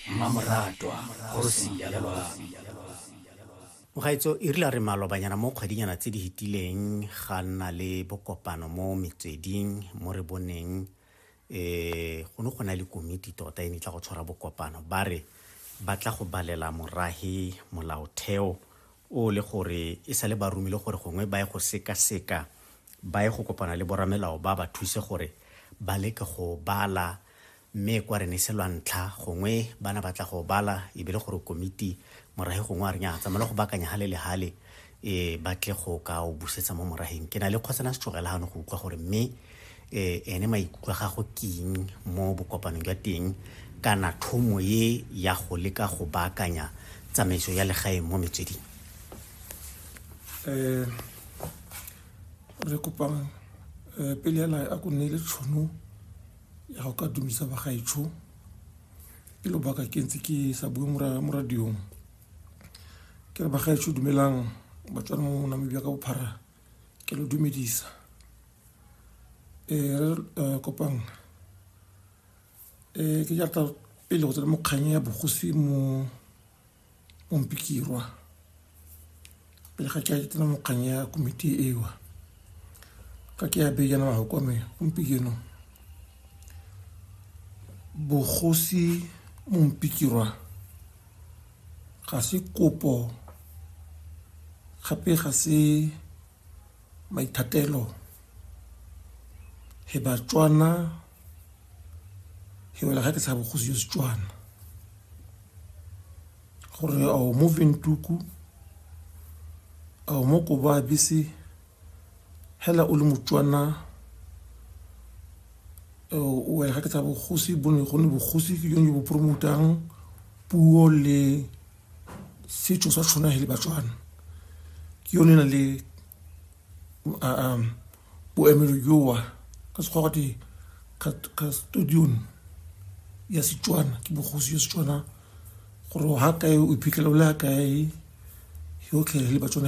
Mmamoratwa kgosi ya Mogaetso e rile a re malobanyana mo kgwedinyana tse di hetileng ga nna le bokopano mo metsweding mo re boneng um go ne go na le komiti tota e ne e tla go tshwara bokopano ba re ba tla go balela morage molaotheo o le gore e sale ba romile gore gongwe ba ye go sekaseka ba ye go kopana le boramelao ba ba thuse gore ba leke go bala mme kwa re ne se lwantlha gongwe bana ba tla go bala e be le gore komiti morage gongwe a re nya tsamaela go bakanya ga le le gale e ba tle go ka o busetsa mo morageng ke na le kgotsana setsogela gano go utlwa gore mme um ene maikutlo a gago keng mo bokopanong jwa teng kana thomo ye ya go leka go baakanya tsamaiso ya legaeng mo metsweding um re kopa um pele ya lae a ko nne le tšhono ya go ka dumisa bagaetsho ke lobaka ke ntse ke sa bue mo radiong ke re bagaetsho dumelang batswana mo namibia ka bophara ke lo dumedisa ee re eh, kopang ee eh, ke jata pele go tsena mokganya ya bogosi mo Ompikirwa pele ga ke a tsena mo kgang ya komiti ewa ka ke ya bejana mago kwa me gompieno bogosi mompikirwa ga se kopo gape ga se Maithatelo he Batswana he wela ga ke sa bogosi yo Setswana gore ao mo Ventuku ao mo Koba bese hela o le Motswana o wela ga ke sa bogosi bo ne go ne bogosi ke yone bo promotang puo le setšo sa tshwana le batswana ke yone na le um boemelo joa ka sekgwa gote custodion ya setswana ke bogosi yo setswana gore ga kae o iphitlhela o le ga kae yotlhe le batswana